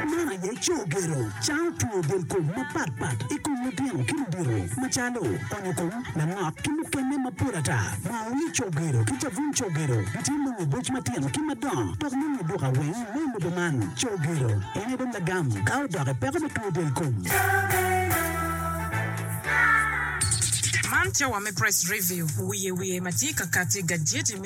Man aye co gedo cawo twongo delkom mapat pat i kom lutino ki ludito macalo onyo kom, lanok ki mukene mapol ata. Maoyi co gedo ki cabun co gedo gitye nongo i boc matino ki madongo dok nongo duka weng me i lobo man. Co gedo en aye dong lagam ka odok i peko me twongo delkom. Man cawa me Press Review, wiye wiye ma tye ka kati, gajeti me.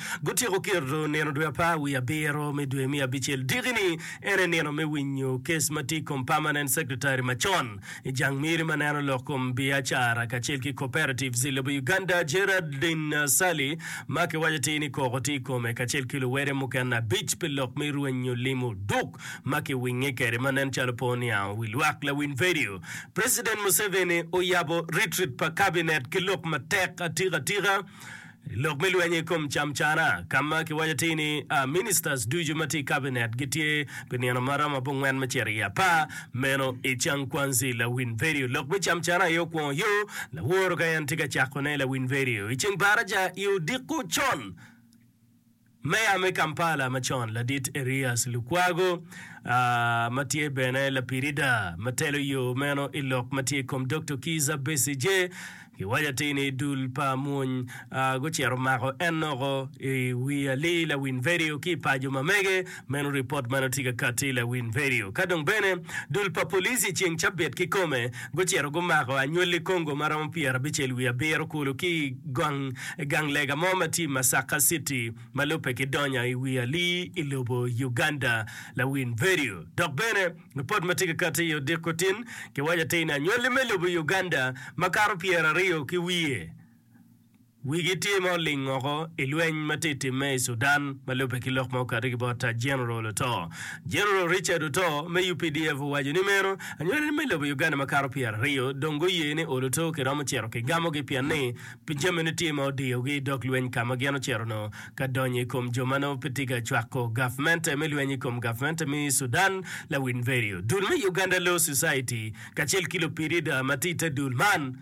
Gutyeko keto nino dwe apar wiye abiro me dwe me abicel diki-ni, en aye nino me winyo kes ma tye i kom Permanent Secretary macon i jang miri ma neno lok kom biacara kacel ki cooperatives i lobo Uganda, Geraldine Ssali, ma kiwaco tir ni koko tye i kome, kacel ki luwede mukene abic pi lok me rwenyo lim oduk ma kiwinge kwede ma nen calo pe oniango wi lwak. Lawiny Vidio, President Museveni oyabo Retreat pa Cabinet ki lok matek atika tika. I lok me lweny i kom camcana, ka ma kiwaco atir ni ministers ducu ma tye i kabinet gitye pi nino ma romo abongwen me cito i apar, meno i Changquanzhi, Lawin Vedio. Lok me camcana aye okwongo yo laworo ka en tye ka cakone i Lawin Vedio i ceng baraja i odiko con. Meya me Kampala macon ladit Erias Lukwago ma tye bene lapirida ma telo yo meno i lok ma tye i kom Dokto Kiiza Besigye kiwaco atir ni dul pa mony gucito mako en noko i wi alii lawiny vedio ki i paco ma mege Meno ripot ma nongo tye ka katti i lawiny redio. Ka dong bene, dul pa police i ceng cabit kikome gucito gumako anywalli Congo ma romo pyera abicel wiye abiro kulu ki i gang gang lega mo ma tye i Masaka city ma lubbe ki donya i wi ali i lobo Uganda. Lawiny redio. Dok bene, ripot ma tye ka katti i odiko tin kiwaco atir ni anywalli me lobo Uganda makato pyera aryo ki wiye, Wigi tye ma oling woko i lweny ma tye ka timme i Sudan ma lubbe ki lok ma okato ki bot ta General oto. General Richard Oto me updf owaco ni meno anywalane me lobo Uganda ma kato pyeraryo dong guye ni olo to ki romo cito ki gamogi pien ni pi jamine tye ma odiyogi i dog lweny ka ma gin ocito noo ka donyo i kom jo ma noo pe tye ka cwako gavmente me lweny i kom gavmente me Sudan lawiny vedio dul me Uganda Law Society kacel ki lupdf ma tye i te dul man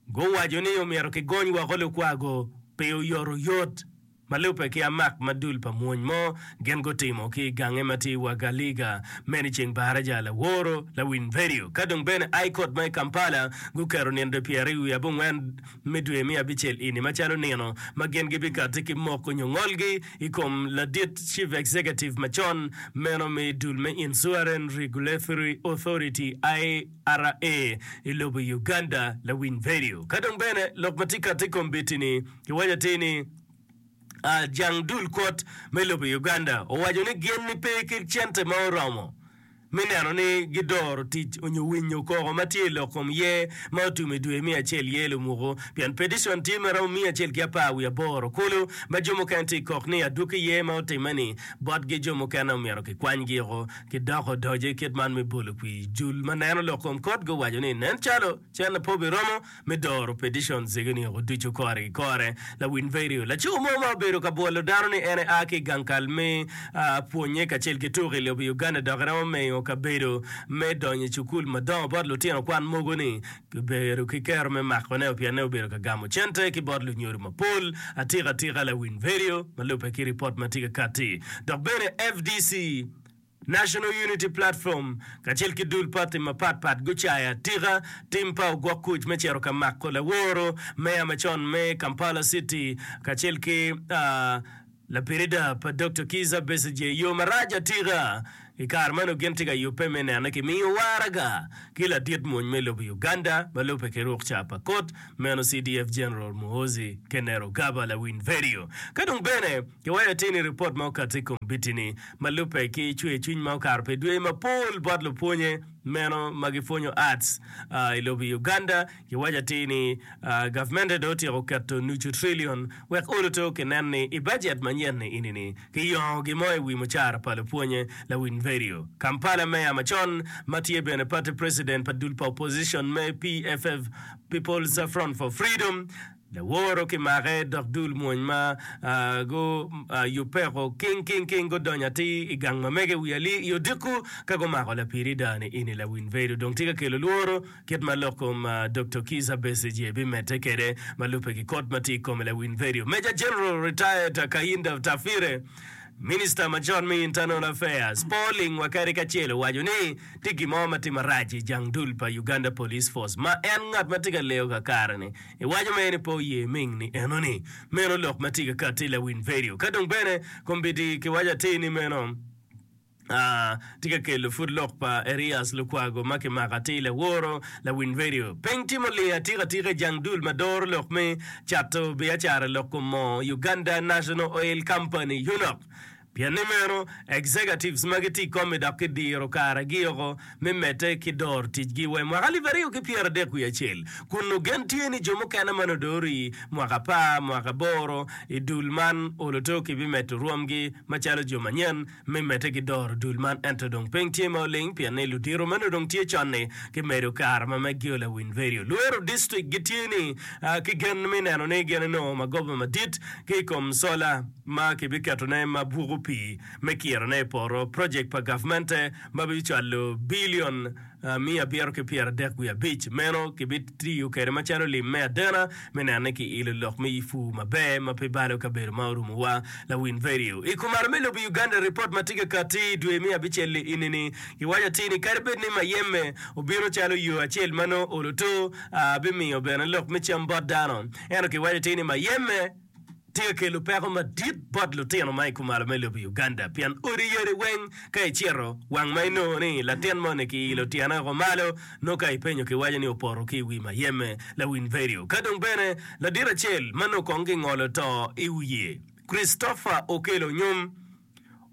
Guwaco ni omyero kigony woko lukwa-gu pi oyotoyot ma lubbe ki amak ma dul pa mwony mo gin gutimo ki i gange ma tye i Wagaliga, meno i ceng Baraja, Laworo, Lawinverio, ka dong bene High Court ma i Kampala guketo nino dwe pyera i wi abongwen me dwe me abicel ini macalo nino ma gin gibikati ki moko nyo ngolgi i kom ladit Chief Executive macon meno me dul me Insuaren Regulatory Authority, I. RA i lobo Uganda lawiny vedio. Ka dong bene lok ma tye kati i kombeddi ni kiwaco atir ni jang dul kwot me lobo Uganda owaco ni gin ni pe ki cente ma oromo me neno ni gi doro tic onyo winyo koko ma tye i lok kom ye ma otum i dwe miya acel ye lumuku pien pedicon tye ma romo miya acel ki apar wiye aboro kulu ma jo mukene tye kok ni adwoki ye ma otime ni bot gi jo mukene omyero ki kwany gi oko ki doko odoce kit man me bolo kwi. Jul ma neno lok kom kot guwaco ni, Nen calo cen lapor bi romo me doro peticion zege ni oko ducu kore ki kore. Lawiny vidio, Laco mo ma obedo ka bwolo dano ni en ea ki i gang kal me pwonye kacel ki tuko i lobo Uganda dok iromo mengo kabedo me donyo i cukul madongo bot lutino kwan mogo ni Kibedo ki kero me makoneo pien ne obedo ka gamo cente ki bot lunyodo mapol. Atika atika lawiny vedio ma lubbe ki ripot ma tye ka katti. Dok bene FDC, National Unity Platform, kacel ki dul pati mapat pat gucayo atika tim pa ogwok kuc me cito ka mako laworo meya macon me Kampala City kacel ki Lapirida pa Dokta Kizza Besigye yo marac atika i kare meno gin tye ka yubbe me nene ki miyo waraga ki ladit mony me lobo Uganda ma lubbe ki rukca pa kot meno CDF General Muhoozi Kenerugaba Lawiny Verio ka dong bene ki wayo atir ni ripot ma okato i kombiti ni ma lubbe ki cwer cwiny ma okato pi dweye mapol bot lupwonye meno ma gipwonyo arts i lobo Uganda Giwaco atir ni gavmente dong otyeko keto nucu trillion wek olo to ki nen ni i bajet manyen ini-ni kiyongo gin mo i wi mucara pa lupwonye. Lawiny Verio, Kampala Meya macon ma tye bene pati preciden pa dul pa opposition me PFF, People's Front for Freedom, laworo ki make dok dul mwony ma guyubbeko king king king gudonyo atir i gang ma mege i wi ali i odiko ka gumako lapiri dani ini. Lawiny Verio dong tye ka kelo lworo. Kit ma lok kom Doktor Kizza Besigye bimedde kwede ma lubbe ki kot ma tye i kome lawiny vedio Major General Retired Kayinda Otafire, Minista ma con me Internal Affairs, Paul Ling Wakari kacel owaco ni tye gin mo ma tye marac i jang dul pa Uganda Police Force ma en ngat ma tye ka leyo kakare-ni. Iwaco mere ni pe oye ming ni enoni meno lok ma tye ka katti i lawiny vedio ka dong bene kombeddi kiwaco atir ni meno. Tye ka kelo pud lok pa Erias Lukwago ma kimako atir laworo lawiny redio. Piny timo lee atika atika i jang dul ma doro lok me cato biacara lok kom moo, Uganda National Oil Company, UNOC. Pien ni meno, executives magi tye i kom-mi dok kidiro karagi oko me medde ki doro ticgi wa i mwaka alip aryo ki pyera adek wiye acel, kun ogen tye ni jo mukene ma nongo doro i mwaka apar, mwaka aboro i dul man oloto kibimedo rwomgi macalo jo manyen. me medde ki doro dul man ento dong piny tye ma oling pien ni ludito meno dong tye con-ni gimedo kare ma Meggio Lawinverio lwero distrik gitye ni ki gen me neno ni gin enongo magoba madit ki i kom sola ma kibiketone ma bwoko pii me kirone i poto, project pa gavmente ma bicwalo bilion. miya abiro ki pyera dek wiye abic, meno kibitiyo kede macalo lim me adena me neno ni ki ilo lok me ifu maber ma pe balo kabedo ma orumu wa. Lawin vedio i kumaro me lobo Uganda report ma tye ka kati dwe me abicel li ini ni gi waco atir ni kadi bed ni mayeme obino calo yo acel ma nongo olo to a bimiyo bene lok me cam bot dano ento ki waco atir ni mayeme tye ka kelo peko madit bot lutino ma i kumalo me lobo Uganda pien odi yadi weng ka icito wang ma inongo ni latin moni ki ilo tyene woko malo nongo ka ipenyo ki waco ni opoto ki i wi mayeme lawiny vedio ka dong bene ladit acel ma nongo kong gingolo to i wiye Christopher Okello Onyum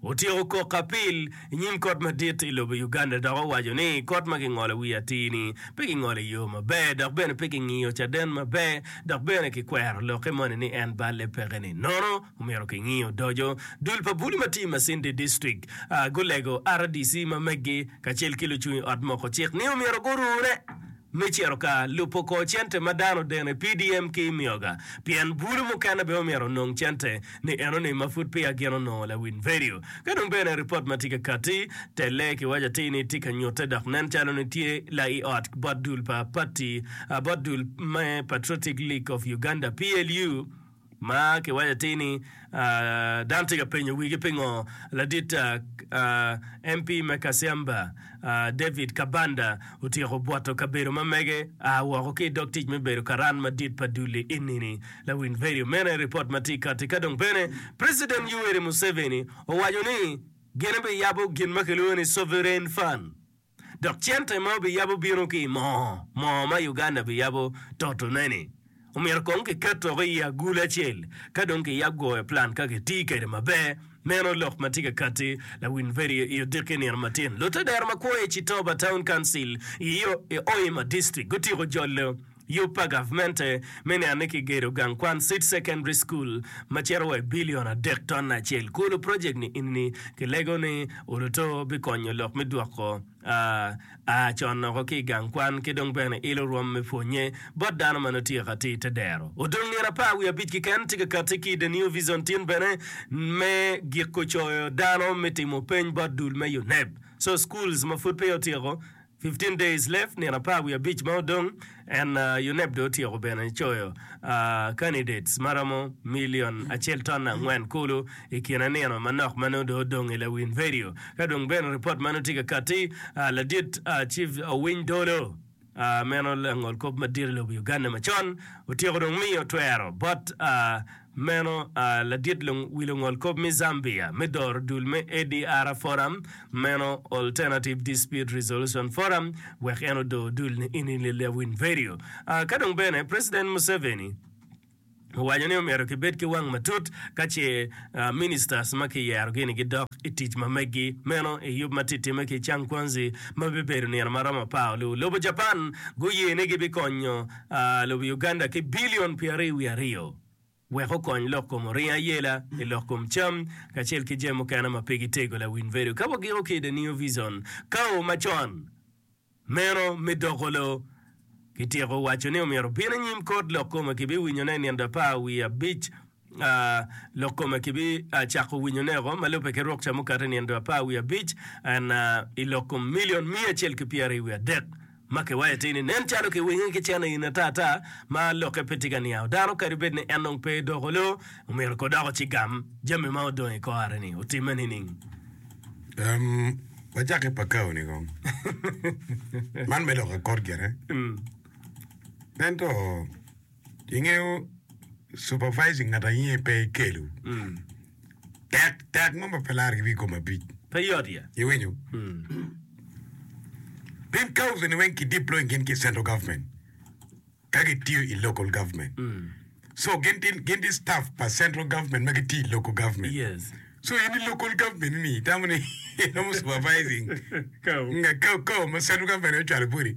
Otyeko kok ki apil i nyim Kot Madit i lobo Uganda dok owaco ni kot ma kingolo wiye atir-ni pe kingolo i yo maber dok bene pe kingiyo caden maber dok bene kikwero lokke moni ni en balle peke ni nono omyero kingiyo odoco. Dul pa bulu ma tye i Masindi District gulego rdc ma meggi kacel ki lucung i ot moko cik ni omyero gurure me cito ka lubo kor cente ma dano deno i PDM ki i Mioga, pien bulu mukene bene omyero onong cente ni enoni ma pud peya gin onongo lawiny vedio. Ka dong bene ripot ma tye ka kati, telle kiwaco atir ni tye ka nyutte dok nen calo ni tye la i ot bot dul pa pati bot dul me Patriotic League of Uganda, PLU, Ma kiwaco atir ni, dano tye ka penyo wigi pingo ladit MP me Kasiamba, David Kabanda otyeko bwoto kabedo ma mege a woko ki i dog tic me bedo karan madit pa dul i enini lawiny Verio. Meno aye ripot ma tye kati. Ka dong bene President Yoweri Museveni owaco ni gin biyabo gin ma kilwongo ni Sovereign Fund. dok cente ma obiyabo bino ki i moo moo ma Uganda biyabo totone-ni. Omyero kong kiket woko i agulu acel ka dong kiyab gwoyo plan ka kitii kwede maber. Meno lok ma tye ka katti lawiny Verio i odiki nino matin. Lute dero ma kwo i Chitoba Town Council i Hoima District gutiko jolo. Yub pa gavmente me niang ni kigedo gang kwan Seed Secondary School ma cito wa i bilion adek ton acel. Kulu project ni ini ni kilego ni oluto bikonyo lok me dwoko a a con oko ki i gang kwan ki dong bene ilo rwom me pwonye bot dano ma nongo tye ka ti te dero. Odong nino apar wiye abic kiken tye ka kati ki i The New Vision tin bene me giko coyo dano me timo peny bot dul me UNEB. So schools ma pud peya otyeko Fifteen Days Left, Nino Apar Wiye Abic ma Odong, En UNEB Dong Otyeko Bene Coyo Candidates ma Romo Milion Acel Ton Angwen Kulu i Kine Nino Manok ma Nongo Dong Odong i Lawin Vedio Ka Dong Bene Ripot Meno Tye Ka Katti Ladit Chief Owiny Dolo Meno Langolkop Madit i Lobo Uganda Macon Otyeko Dong Miyo Twero Bot Meno a ladit wi lungol kop me Zambia me doro dul me ADR Forum meno Alternative Dispute Resolution Forum wek en odo dul ni Ini Lilya Winverio a ka dong bene President Museveni owaco ni omyero ki bed ki wang matut ka ce a Ministers ma ki yero gi ni gi dok I tic ma meggi meno I yub ma titime ki Changquanzi ma bibedo nino ma romo apar oluo lobo Japan guye ni gi bi konyo lobo Uganda ki bilion pyeraryo wiye aryo wek okony lok kom oringo ayela i lok kom cam kacel ki jami mukene ma pe gitego lawiny vedo ka wagiko ki i The New Vision kawo macon meno me doko lo Kityeko waco ni omyero obin anyim kot lok kome kibiwinyone i nino apar wiye abic Lok kome kibicako winyoneo ma lubbe ki rok ca mukato i nino dwe apar wiye abic i lok kom milion miya acel ki pyeraryo wiye adek. Ma kiwaco atir ni, Nen calo kiwinge ki cen in ata ata ma lokke pe tye ka niango dano kadi bed ni en dong pe doko loo, omyero kong dok ocigam jami ma odong i kor areni otimme nining? Wacak ki Pakao-ni kong. Man me lok akot gire. Ento. Ingeyo supervising ngat aye pe kelo tek tek mo ma pe larre ki wi kom abic. Pe yot ye. Iwinyo? Pien council ni weng ki deploy gin ki central government ka gitiyo i local government. So gin ti gin ti staff pa central government ma gitiyo i local government. Yes. So in i local government ni itamo ni iromo supervising Kao. nga kao kao ma central government ocwalo boti.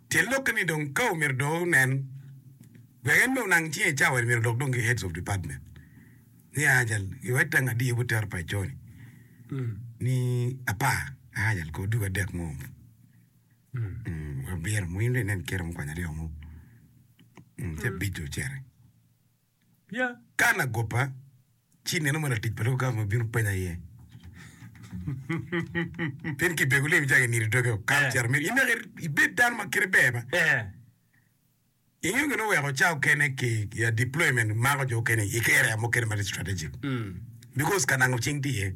Tye lokke ni dong ka omyero do nen wek en me onang cinge cawa en myero odok dong ki heads of department ni ajal i wet dang adiye but tero pa ico ni ni apar ajal ko dugo adek mo abiro mo in dong inen kiro mukwanya aryo mo ce abic dong ocere. Kan agobba, ci ineno ma latic pa Loka Gavman obino penya iye. Tin ki bego lim icako inido doge okato cito mito in dok ibed dano ma kite ber ma. Ingeyo gin oweko ca okene ki ya deployment mako jo okene i area mukene ma tye strategic. Because kanango cing tye iye.